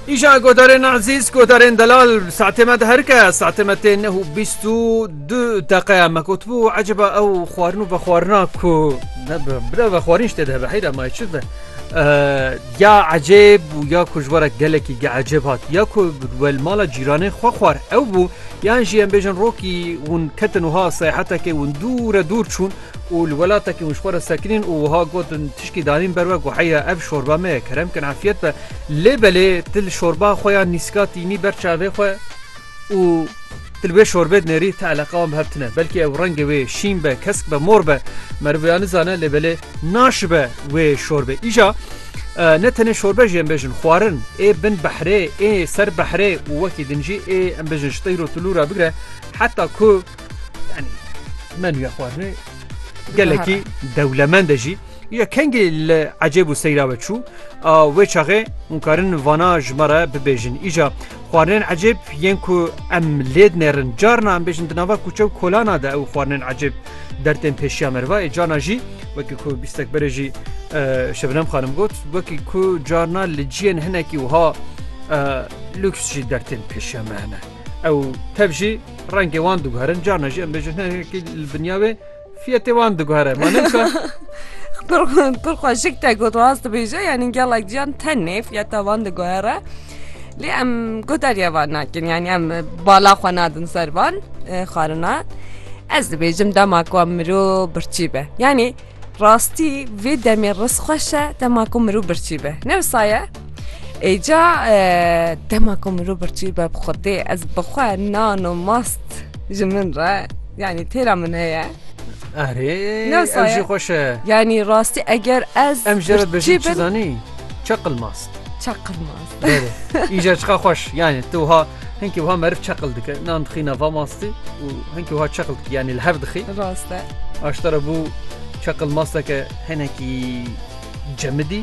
Îşa godarên ezîz godarên delal saetê me diherike saetê me tê neh û bîst û du deqe me gotibû eceba ew xwarin û vexwarina ku bira vexwarîn ştê dibe heyra may çi be ya ecêb û ya ku ji were gelekî ge ecêb hat ya ku wel mala cîranê xwe xwar ew bû yan jî em bêjin rokî hûn ketin wiha seyahetekê hûn dûre dûr çûn û li welatekî hûn ji xwe re sekinîn û wiha got, Tişkî danîn ber we ku heya ev şorba me ye kerem kin efiyet be. Lê belê tu li şorba xwe ya nîska tînî ber çavê xwe û tu li wê şorbê dinêrî ti eleqa wan bi hev tune. Belkî ew rengê wê şîn be, kesk be, mor be. Meriv wiha nizane lê belê naşibe wê şorbê. Îja ne tenê şorbe jî em bêjin xwarin ê bin behrê ê ser behrê û wekî din jî ê em bêjin ji tîr û tulûra bigire heta ku Yani menüya xwarinê gelekî dewlemend e jî ya kengê li ecêb û seyra ve çû a wê çaxê hûn karin vana ji me re bibêjin îja xwarinên ecêb yên ku em lêd nêrin carna em bêjin di nava kûçe û kolana de ew xwarinên ecêb dertên pêşiya meriva ê cana jî wekî ku bîstek berê jî şebinem xanim got wekî ku carna li ciyên hinekî wiha lüks jî dertên pêşiya me hene. Ew tev jî rengê wan diguherin carna jî em bêjin hinekî li binya wê fiyetê wan diguhere ma ne wisa Pirxweşik te got rast dibêje yanî gelek jiyan tenê fiyeta wan diguhere lê em guhdarîya van nakin yanî em bala xwe nadin ser van xwarinan ez dibêjim dema ku em mirov birçî be yanî rastî vê demê riz xweş e dema ku mirov birçî be ne wisa ye Êca dema ku mirov birçî be bi xwedê ez bi xwe nan û mast ji min re yanî têra min heye. Erê Nasıl ev jî ya? xweş e. Yanî rastî eger ez Em jê re birçî bijî çi bin zanî? Çeqil mast. çaqil mast. Berê. Îja çiqa xweş. Yani tu ha hinkî ha meriv çeqil dike. Nan dixîna va mastî û hinkî ha çeqil dike. Yani li hev dixî. Rast e. Aştara bû çeqil masteke hinekî cemidî.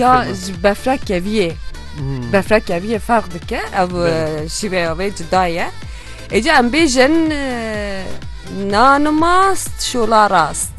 ya ji befra keviyê befra keviyê ferq dike ev şîveya vê cida ye êca em bêjin nanimast şola rast.